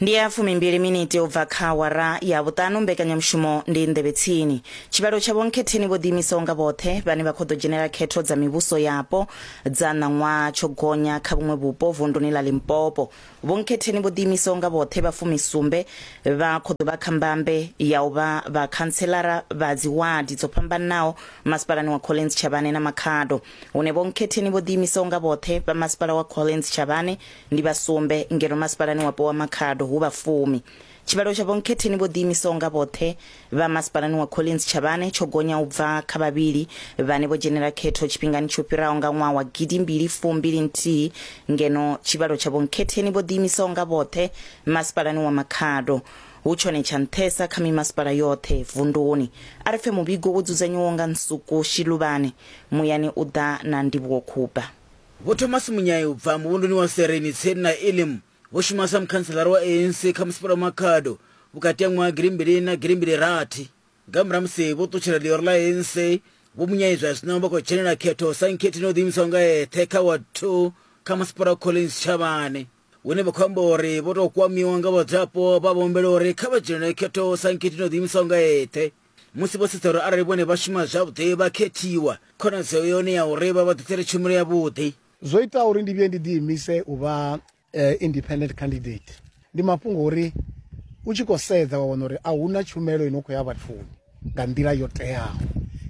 ndi ya fumimbili miniti u bva kha awara ya vhuṱanu mbekanyamushumo ndi nḓevhe tsini tshivhalo tsha vhonkhetheni vho ḓiimisaho nga vhoṱhe vhane vha khou ḓo dzhenela khetho dza mivhuso yapo dza ṋaṅwaha tsho gonya kha vhuṅwe vhupo vunduni ḽa limpopo vhonkhetheni vho ḓiimisaho nga vhoṱhe vha fumisumbe vha khou ḓo vha kha mbambe ya u vha vhakhantselara vha dziwadi dzo fhambananaho masipalani wa collins tshavhane na makhado hune Vho Nkhetheni vho ḓiimisaho nga vhoṱhe vha masipala wa Collins Tshavhane ndi vha sumbe ngeno masipalani wapo wa Makhado hu vha fumi. Tshivhalo tsha Vho Nkhetheni vho ḓiimisaho nga vhoṱhe vha masipalani wa Collins Tshavhane tsho gonya u bva kha vhavhili vhane vho dzhenela khetho tshifhingani tsho fhiraho nga ṅwaha wa gidi mbili fumbili nthihi ngeno tshivhalo tsha Vho Nkhetheni vho ḓiimisaho nga vhoṱhe masipalani wa Makhado hu tshone tsha nṱhesa kha mimasipala yoṱhe vunduni. A ri pfe muvhigo wo dzudzanyiwaho nga Nsuku Shiluvhane. Muyani u ḓa na ndivhuwokhubva. Vho Thomas Munyai u bva muvhunduni wa Sereni tsini na Elim vho shuma sa mukhantselara wa ANC kha Masipala wa Makhado vhukati ha ṅwaha gidi mbili na gidi mbili rathi. Nga murahu ha musi vho ṱutshela ḽioro ḽa ANC, Vho Munyai zwa zwino vha khou dzhenela khetho sa nkhethi no ḓiimisaho nga eṱhe kha Ward Two kha Masipala wa Collins Tshavhane, hune vha khou amba uri vho tou kwamiwa nga vhadzulapo vha vha humbela uri kha vha dzhenele khetho sa nkhethi no ḓiimisaho nga eṱhe. Musi vho sedza uri arali vhone vha shuma zwavhuḓi vha khethiwa, khonadzeo yone ya uri vha vha ḓisele tshumelo yavhuḓi. Zwo itaho uri ndi vhuye ndi ḓiimise u vha independent candidate ndi mafhungo uri u tshi khou sedza wa wana uri a huna tshumelo ino khou ya vhathuni nga nḓila yo teaho.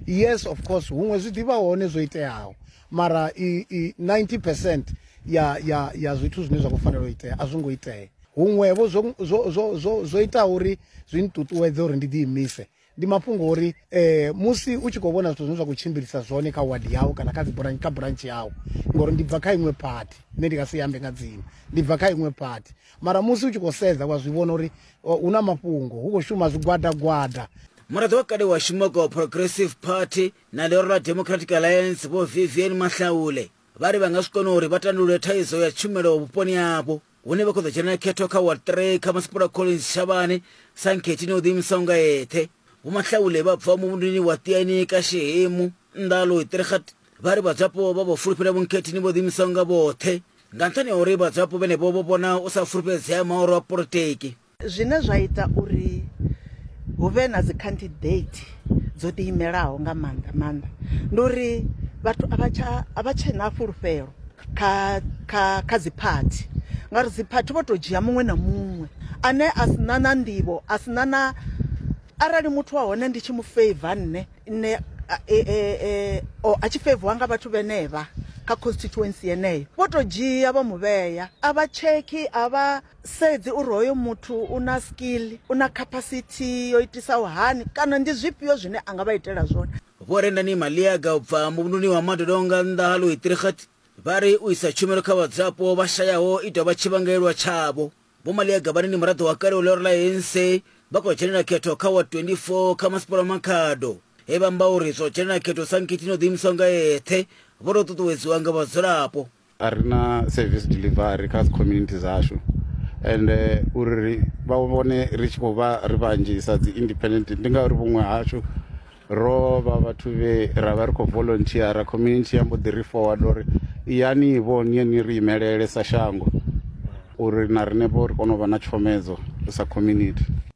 Yes of course huṅwe zwi ḓivha hone zwo iteaho Mara i, i 90 percent ya, ya, ya zwithu zwine zwa khou fanela u itea a zwi ngo itea. Huṅwevho zwo, zwo, zwo, zwo, zwo itaho uri zwi nṱuṱuwedze uri ndi ḓiimise ndi mafhungo uri eh, musi u tshi khou vhona zwithu zwine zwa khou tshimbilisa zwone kha wadi yau kana kha dziburantshe kha burantshi yau ngori ndi bva kha iṅwe phathi nṋe ndi nga si ambe nga dzina ndi bva kha iṅwe phathi mara musi u tshi khou sedza wa zwi vhona uri oh, hu na mafhungo hu khou shuma zwigwadagwada muraḓo wa kale wa shuma kwa progressive party na ḽihoro ḽa democratic alliance vho vivian mahlaule vha ri vha nga zwi kona uri vha tandulule thaidzo ya tshumelo vhuponi havho hune vha khou ḓo dzhenela khetho kha ward 3 kha masipula collins shavhane sa nkhethini o ḓiimisaho nga eṱhe vho mahlaule vha bvaho muvhunduni wa tiaini ka shehemu nnḓa ha loitirikhat vha ri vhadzwapo vha vho fulufhela vhunkhethini vho ḓiimisaho nga vhoṱhe nga nṱhani ha uri vhadzwapo vhenevho vho vhona u sa fulufhedzea maoro a politiki Zwine zwa ita uri hu vhe na dzi candidate dzo ḓi imelaho nga maanḓa maanḓa ndi uri vhathu a vha tsha a vha tshe na fhulufhelo kha kha kha dzi phathi ngauri dzi phathi vho to dzhia muṅwe na muṅwe ane a si na na nḓivho a si na na arali muthu wa hone ndi tshi mu favor nne nne e, e, e, o a tshi favor nga vhathu vhenevha kha constituency yeneyo vho to dzhia vha mu vhea a vha tshekhi a vha Sedzi uri hoyo muthu u na skill, u na capacity yo itisaho hani kana ndi zwifhio zwine a nga vha itela zwone. Vho Rendani Maliaga u bva muvhunduni wa Madodonga nnḓa ha Louisdrichert vha ri u isa tshumelo kha vhadzulapo vha shayaho i tou vha tshivhangaelwa tshavho. Vho Maliaga vhane ndi muraḓo wa kale wa ḽioro ḽa ANC vha khou dzhenela khetho kha Ward 24 kha Masipala wa Makhado he vha amba uri zwa u dzhenela khetho sa nkhithi na u ḓiimisa nga eṱhe vho tou ṱuṱuwedziwa nga vhadzulapo. a ri na service delivery kha dzi community dzashu and eh, uri ri vha vhone ri tshi khou vha ri vhanzhi sa dzi independent ndi ngauri vhuṅwe hashu ro vha vhathu vhe ra vha ri khou volunteera community ya mbo ḓi ri forward uri yani vho niye ni ri imelele sa shango uri na riṋe vho ri kone u vha na tshomedzo sa community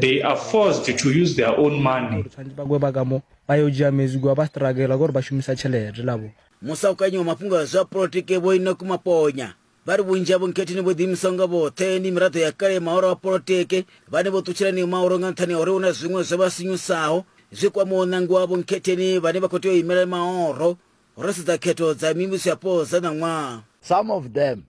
They are forced to use their own money. musaukanyi wa mafhungo a zwa polotiki vho inoku maponya vha ri vhunzhi havho nkhethini vho ḓiimisaho nga vhoṱhe ndi miraḓo ya kale mahoro a polotiki vhane vho ṱutshela niyo mahoro nga nṱhani ha uri hu na zwiṅwe zwo vha sinyusaho zwi kwamaho ṋangi wavho nkhetheni vhane vha khou tea u imela mahoro ro sedza khetho dza mivhuso yapo dza ṋaṅwaha Some of them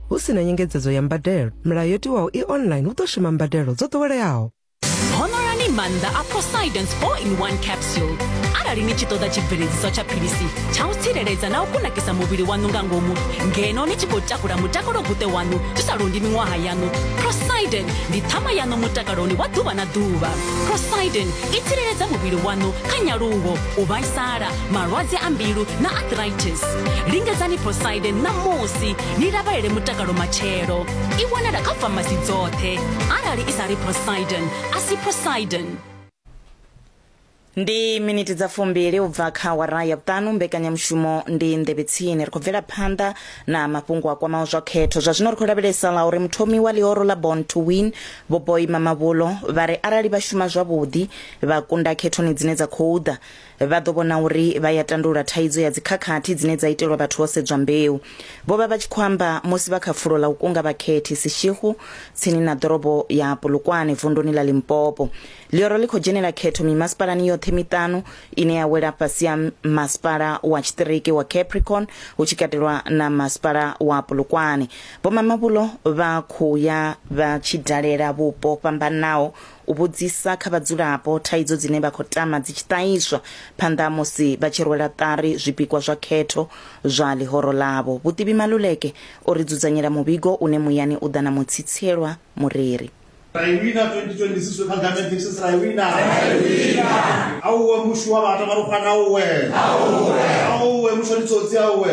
hu si na nyengedzedzo ya mbadelo milayo yo tiwaho i online hu ḓo shuma mbadelo dzo ḓoweleaho honorani maanḓa a prosidence 4 in 1 capsule arali ni tshi ṱoḓa tshibveledziso tsha philisi tsha u tsireledza na u kunakisa muvhili waṋu nga ngomu ngeno ni tshi khou takula mutakalo guṱe waṋu zwi sa londi miṅwaha yaṋu prosiden ndi ṱhama yaṋu mutakaloni wa ḓuvha na ḓuvha prosiden i tsireledza muvhili waṋu kha nyaluwo u vhaisala malwadze a mbilu na arthritis lingedzani prosiden ṋamusi ni lavhalele mutakalo matshelo i wanala kha famasi dzoṱhe arali i sa ri prosidon a si prosidon ndi miniti dza fumbili u bva kha wara ya vhuṱanu mbekanyamushumo ndi nḓevhe tsini ri khou bvela phanḓa na mafhungo a kwamaho zwa khetho zwa zwino ri khou lavhelesa ḽa uri muthomi wa ḽihoro ḽa born to win vhoboima mavhulo vha ri arali vha shuma zwavhuḓi vha kunda khethoni dzine dza khou ḓa vha ḓo vhona uri vha ya tandulula thaidzo ya dzikhakhathi dzine dza itelwa vhathu ho sedzwa mbeu vho vha vha tshi khou amba musi vha kha fulo ḽa u kunga vhakhethi sishihu tsini na ḓorobo ya polokwane vunduni ḽa limpopo ḽioro ḽi khou dzhenela khetho mimasipalani yoṱhe miṱanu ine ya wela fhasi ya masipala wa tshiṱiriki wa capricorn hu tshi katelwa na masipala wa polokwane vhomamabulo vha khou ya vha tshi dalela vhupo fhambanaho u vhudzisa kha vhadzulapo thaidzo dzine vha khou tama dzi tshi ṱahiswa phanḓa ha musi vha tshi rwela ṱari zwipikwa zwa khetho zwa ḽihoro ḽavho. Vhuṱivhi Maluleke o ri dzudzanyela muvhigo une muyani u ḓa na mutsitsielwa mureri. Ra i wina 2026 we Kagame thinks ra i wina. Auwe mushu wa vhata marukwana auwe. Auwe mushu ndi tsotsi auwe.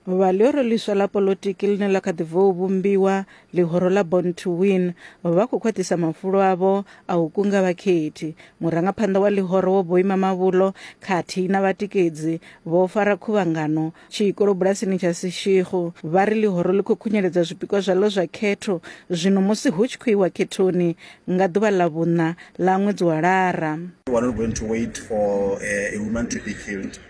Vhuvha ḽi uri ḽiswa ḽa poḽotiki ḽine ḽa kha ḓi bvou vhumbiwa Ḽihoro ḽa Born to Win vha khou khwaṱhisa mafulo avho a u kunga vhakhethi. Murangaphanḓa wa ḽihoro Vho Boima Mavhulo khathihi na vhatikedzi vho fara khuvhangano tshikolo bulasini tsha Seshego vha ri ḽihoro ḽi khou khunyeledza zwipikwa zwaḽo zwa khetho zwino musi hu tshi khou iwa khethoni nga ḓuvha ḽa vhuṋa ḽa ṅwedzi wa Lara. We're not going to wait for a woman to be killed.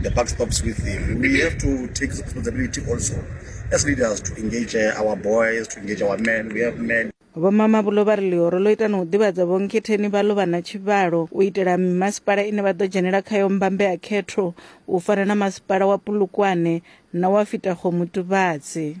The buck stops with him. We have to take responsibility also as leaders to engage uh, our boys, to engage our men. We have men. vho mamabulo vha ri ḽihoro ḽo ita na u ḓivhadza vhonkhetheni vha ḽo vha na tshivhalo u itela mimasipala ine vha ḓo dzhenela khayo mbambe ya khetho u fana na masipala wa pulukwane na wa fitakgomutuvhadzi